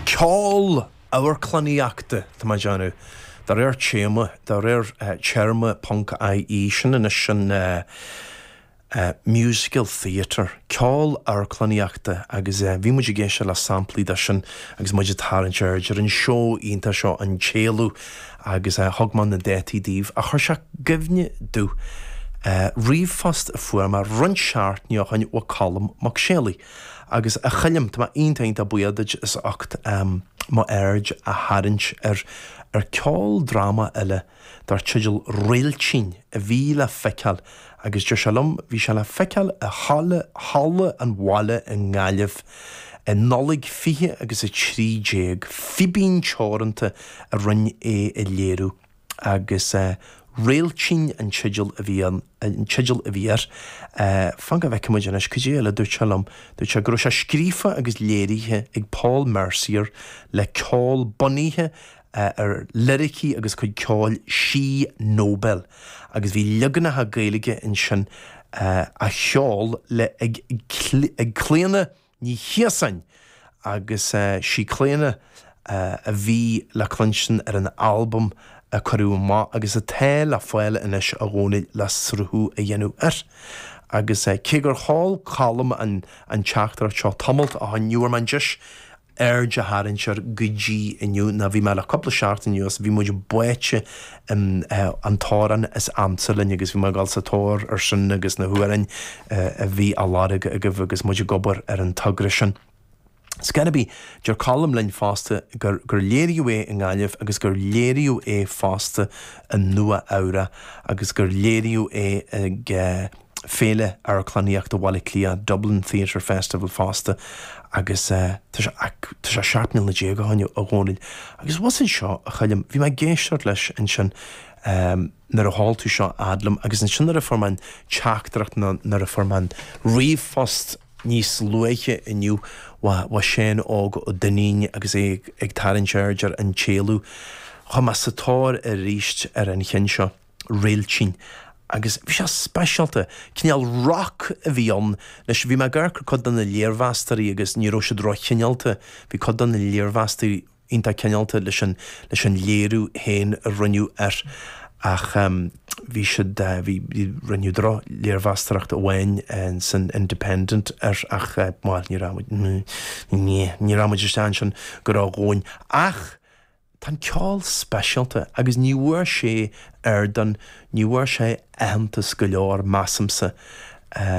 Ceol amharclannaíochta atá á dhéanamh de réir téama, de réir téarma Ponc-IE, sin anois sin musical theatre, ceol amharclannaíochta agus bhí muid ag éisteacht le samplaí de sin agus muid ag tarraingt aird ar an seó iontach seo An tÉalú agus thug mé na dátaí daoibh agus chuir sé i gcuimhne domh ríomhphost a fuair mé roinnt seachtaine ó shin ó Cholm Mac Séalaigh. Agus, a Choilm, tá mé iontach iontach buíoch duit as ucht m'aird a tharraingt ar ar ceoldráma eile dar teideal Réiltín a bhí le feiceáil, agus deir sé liom, bhí sé le feiceáil i halla, Halla an Bhaile i nGaillimh i Nollaig 20 agus a 13. Fíbín Teoranta a rinne é a léiriú. agus Réiltín an an teideal a bhí air. Fan go bhfeicfidh muid anois, cad é eile a dúirt sé liom? Dúirt sé go raibh sé scríofa agus léirithe ag Paul Mercier le ceol bunaithe ar liricí agus cuid ceoil Si Nobel agus bhí leaganacha Gaeilge ansin á gceol ag ag Clíona Ní Chiosáin agus is í Clíona a bhí le cluinstin ar an albam a cuireadh amach agus atá le fáil anois a Dhónaill le sruthú a dhéanamh air. Agus cé gur sheol Colm an teachtaireacht seo tamalt ó shin ní bhfuair mé an deis aird a tharraingt air go dtí inniu nó bhí mé le cúpla seachtain anuas, bhí muid báite san amhrán is ansa linn agus bhí mé ag dul sa tóir ar sin agus na hamhráin a bhí á lorg agaibh agus muid ag obair ar an togra sin. Cár bith, deir Colm linn fosta gur léiríodh é i nGaillimh agus gur léiríodh é fosta i Nua Eabhrach agus gur léiríodh é ag. Féile Amharclannaíochta Bhaile Átha Cliath, Dublin Theatre Festival, fosta agus tá sé tá sé seacht mbliana déag ó shin, a Dhónaill. Agus a bhfuil anseo, a Choilm, bhí mé ag éisteacht leis ansin nuair a sheol tú seo a fhad liom agus ansin nuair a fuair mé an teachtaireacht nó nuair a fuair mé an ríomhphost níos luaithe inniu ó Sheán Óg Ó Duinnín agus é ag tarraingt aird ar An tÉalú, chuaigh mé sa tóir aríst ar an cheann seo. réiltín agus bhí sé speisialta, cineál rock a bhí ann. Anois, bhí mé ag amharc ar chuid de na léirmheastóirí agus ní raibh siad ró-chineálta, bhí cuid de na léirmheastóirí iontach cineálta leis an, leis an léiriú féin a rinneadh air ach ehm bhí siad, bhí, rinneadh droch-léirmheastóireacht amháin san Independent air ach bhuel ní raibh muid, ní raibh muid istigh ansin a Dhónaill ach Tá an ceol speisialta agus ní bhfuair sé ar don ní bhfuair sé aitheantas go leor, measamsa,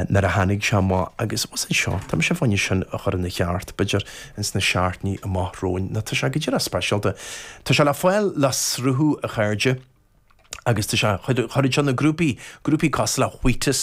nuair a tháinig sé amach agus bhuel, anseo, tá mise faoi sin a chur ina cheart, b'fhéidir ins na seachtainí amach romhainn tá sé go díreach speisialta. Tá sé le fáil le sruthú, a chairde, agus tá sé chuir, iad seo na grúpaí, grúpaí cosúil le Wheatus,